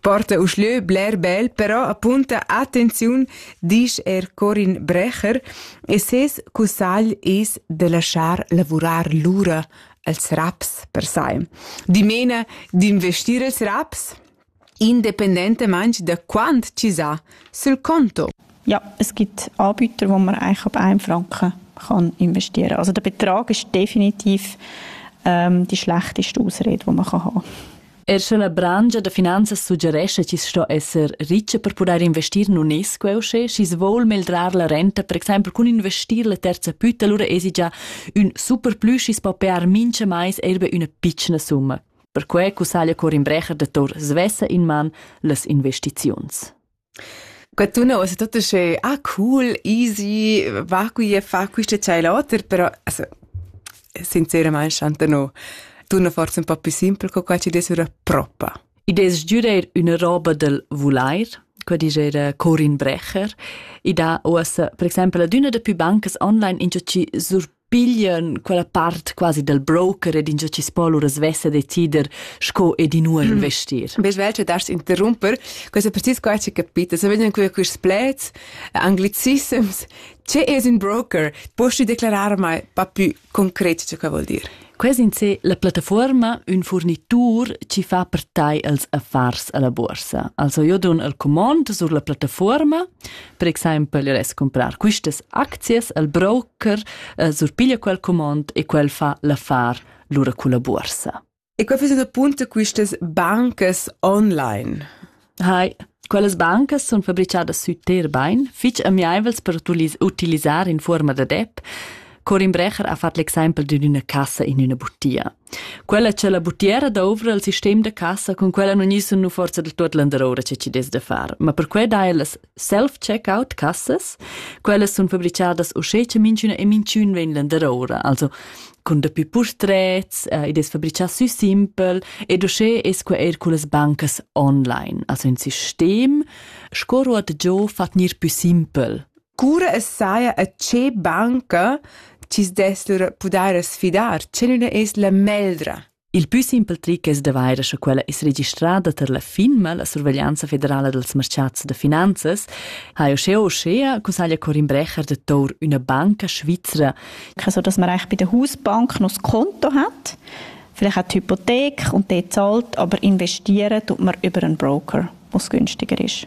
Porta uschlö bler bel, però apunta attenziun, disch er Corin Brecher, e ses cussagl es da laschar lavurar lura als raps per sai. Dimena d'investir els raps independentamaing da quant chi s'ha sul conto. Ja, es gibt Anbieter, wo man eigentlich ab 1 Franken kann investieren kann. Also der Betrag ist definitiv ähm, die schlechteste Ausrede, die man haben kann. Er sche la brangia da finanzas suggerescha chi sto esser richa per pudair investir in UNESCO usche, schi's voul meldrar la renta, per exempel cun investir la terza pütta, lura esi già ün superplü schi's po pear mincha mais eir be üna pitschna summa. Perque cussaglia Corin Brecher da Tor svessa in man las investiziuns. Qua tuna ussa tut uschè «Ah cool, easy, va qui e fa quist e tschai l'oter», però also sinceramaing chanta no tuna forsa ün po plü simpel co qua chi dess üra propa. I dess giüdair üna roba dal vulair, qua dischera Corin Brecher. I dà uossa per exaimpel ad üna da pü bancas online ingio chi sur piglian quella part quasi dal broker ed ingia chi spo lura svessa decider sco ed inua investir. Bes vel che dars interrumper, questo precis qua ci capita, se vegnan qui quist plets anglicisms, che es un broker? Posti declarar mai pa più concret ce che vuol dir? Quest in se la plattafuorma ün furnitur chi fa per tai els affars alla borsa. Also io dun el comond sur la plattafuorma, per exaimpel io res comprar quistas aczias al broker eh, surpiglia quel comond e quel fa l'affar lura culla borsa. E qua fais appunto quistas bancas online. Hai, quellas bancas sun fabrichadas sü ter bain, fich amiaivels per utilisar in fuorma da depp. Corin Brecher ha fat l'exempel di üna cassa in üna butia. Quella c'è la butiera douvra il sistem da cassa, con quella non isun nu forza da tuot landaroura che ci des da far, ma per que dai las self-checkout cassas. Quellas sun fabricadas uschè cha minchüna e minchün vegn landeroura, also cun dapü purtrets, eh, id es fabrichà sü simpel ed uschè es que eir cullas bancas online. Also ün sistem sco ruot giò fat gnir pü simpel. Cura es saja a che banca chi's dess lur pudair sfidar, che nun es la meldra? Il pü simpel tric es d'avair scha quella es registrada tar la FINMA, la Surveglianza federala dals marchats da finanzas, ha uschea uschea cussaglia Corin Brecher de Tour üna banca svizra. Also, dass man eigentlich bei der Hausbank noch das Konto hat, vielleicht auch die Hypothek und dort zahlt, aber investieren tut man über einen Broker, was günstiger ist.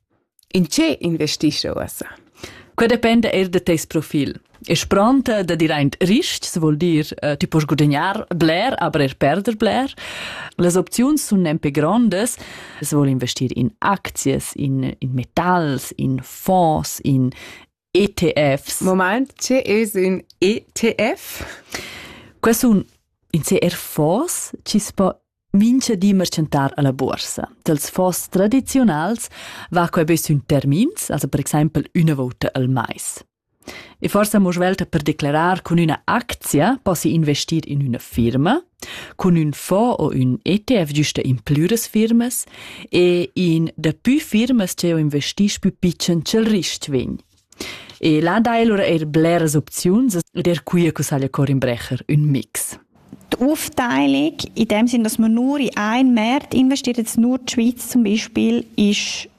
In che investisce uossa? Quei dependa eir da teis profil. E spronta da dir aint rists vuol dir uh, ti poss gudagnar bler, aber er perder bler. Las opziuns sun nempe grondas. Es vuol investir in aczias, in, in metals, in fonds, in ETFs. Moment, tge es ün ETF? Quai sun in CR fonds chi's po mincha di merchantar a la buorsa. Dels fonds tradiziunals va quai be sün termins, also per exaimpel üna vouta al mais. E forsa mo svelta per declarar cun üna actia possi investir in üna firma, Cun ün fond o ün ETF güsta implü das firmas e in dapü firmas ch'eu investisch pü pitschen cha'l rist vegn. E là dai lura eir bleras opziuns ed eir quia cussaglia Corin Brecher ün mix. Die Aufteilung, in dem Sinn, dass man nur in einen Markt investiert, jetzt nur die Schweiz zum Beispiel, ist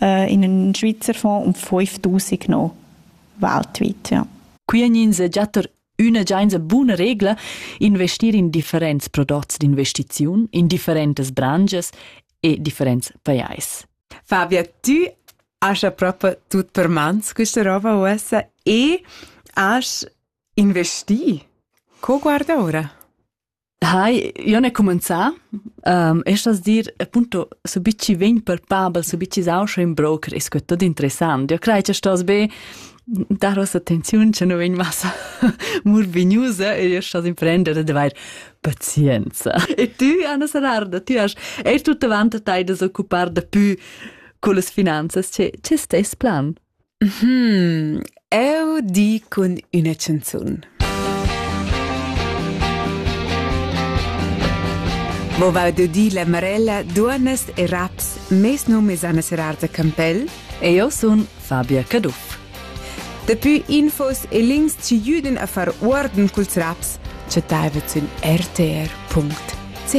äh, in ün Schweizer Fonds um 5000 no weltweit, ja. Quienins e giatter üna giainsa buna regla investir in differents prodots d'investiziun, in differentas branches e differents pajais. Fabia, tu hast ja proprio tut per mans questa roba USA e hast investi. Co guarda ora? Hai, io ne cumenzà. Um, e stas dir, appunto, so bici vegn palpabel, so bici sau schon in broker, ist gut tot interessant. Io crei che stos be dar ossa attenziun che nu vegn massa murvignusa e io stos imprendere de vair pazienza. E tu, Anna Sararda, tu hast er tutta vanta tai da occupar da pü con las finanzas. Che, che stes plan? Uhm, eu di cun üna chanzun. Mo vau de di la Marella duonnas e raps mes num es Anna Serarta Campell e io sun Fabia Caduff. Daplü infos e links ci jüden a far uorden culs raps chattaivet sün rtr.ch.